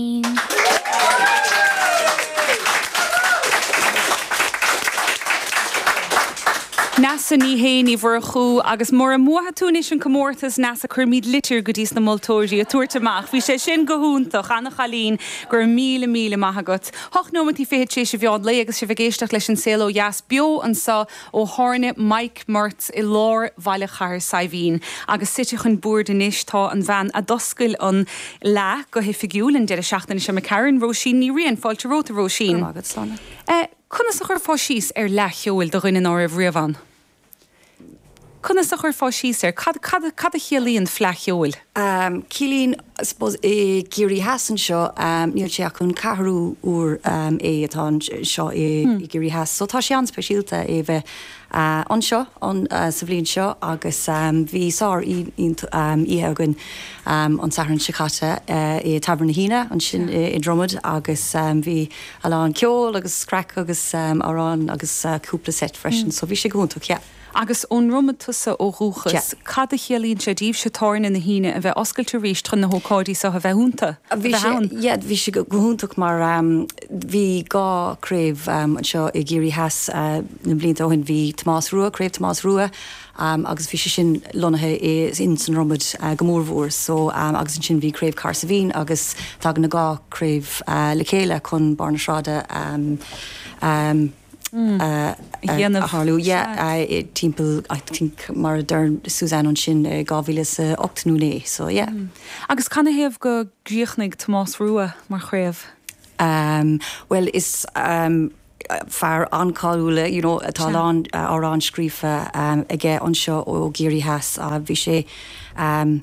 féin. Neasa Ní hÉ, Ní Mhurchú, Agus mura mbuafaidh tú anois an comórtas, Neasa, cuirfimid litir go dtís na moltóirí ag tabhairt amach. Bhí sé sin go hiontach. Ana-chailín. Go raibh míle míle maith agat. Hocht nóimeantaí fichead tar éis an mheán lae agus sibh ag éisteacht leis An Saol Ó Dheas beo anseo Ó thábhairne Mike Murt i lár Bhaile Chathair Saidhbhín agus suite chun boird anois tá an bhean a d'oscail an Fhleadh go hoifigiúil an deireadh seachtaine seo imigh tharainn, Róisín Ní Riain. Fáilte romhat, a Róisín. Go raibh maith agat, Sláine. Conas a chuirfeá síos ar Fhleadh Cheoil do dhuine ná raibh riamh ann? Conas a chuirfeá síos air? Cad, cad, cad a chiallaíonn Fleadh Cheoil? Ciallaíonn, I suppose, i gCiarraí Theas anseo, níl sé ach an ceathrú uair é atá anseo i gCiarraí Theas, so tá sé an-speisialta é bheith anseo sa bhliain seo agus bhí sár oíche againn an Satharn seo caite i dtábhairne na hUíne ansin i nDromad agus bhí a lán ceol agus craic agus amhráin agus cúpla seit freisin, so bhí sé go hiontach, yeah. Agus ón nDromad tusa ó dhúchas, cad a chiallaíonn sé daoibhse tábhairne na hUíne a bheith oscailte arís chun na hócáidí seo a bheith ionta, a bheith ann? Yeah, bhí sé go hiontach mar bhí dhá craobh anseo i gCiarraí Theas na blianta ó shin. Bhí Tomás Rua, Craobh Tomás Rua agus bhí sé sin lonnaithe i in sa nDromad go mór mhór. So agus ansin bhí Craobh Chathair Saidhbhín agus tagann na dhá craobh le chéile chun Barr na Sráide a dhéanamh. tharlú yeah yeah timpeall I think mar a deir Suzanne ansin 2008 nó 9 so yeah. Agus canathaobh go gcríochnaigh Tomás Rua mar chraobh? Amm bhuel is amm fear an-cáiliúil you know tá a lán amhrán scríofa aige anseo ó Chiarraí Theas bhí sé amm